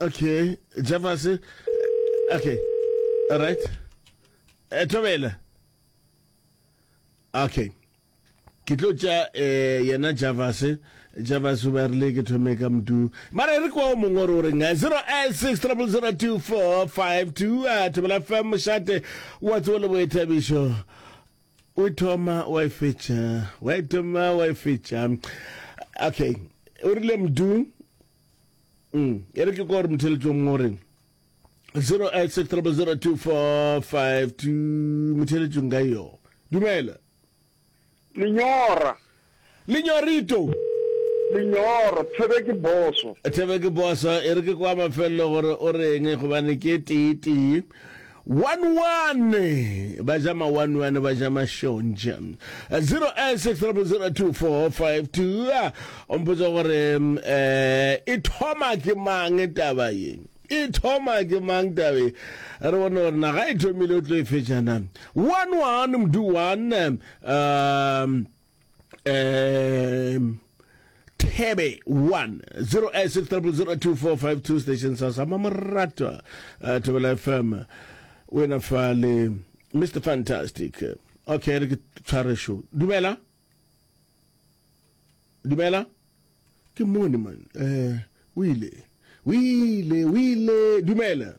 okay jafase okay all right eh, thobela okay ke tlo tša um yena javase javase ba rile ke thome ka mdu mara re kwa o mongwe re o reng 086 a thobela fm mošate wa tsewo le boethabišo O e thoma wa e fetša, wa e thoma wa e fetša. Okay, o rile mdu mm e re ke kore motheletšong mo reng 08600245 motheletšong ka yo dumela lenyora Lenyorito. Lenyoro, Thebe ke boso. Thebe ke boso, e re ke kwa mafelelo gore o reng gobane ke tee tee. One-one, ba ja ma one-one, ba ja mašontšha. 0860002452, o mpotsa gore um e thoma ke mang taba ye? e thoma ke mang tabe re bone gore naga e thomile o tlo e fetšana one one mdu one um um Tebe 1 0 eh, 6000245 station sa sa mamorata uh, Tebela FM o ena fa le Mr Fantastic okay re ke tshware show dumela dumela ke mone man eh o ile o ile o ile dumela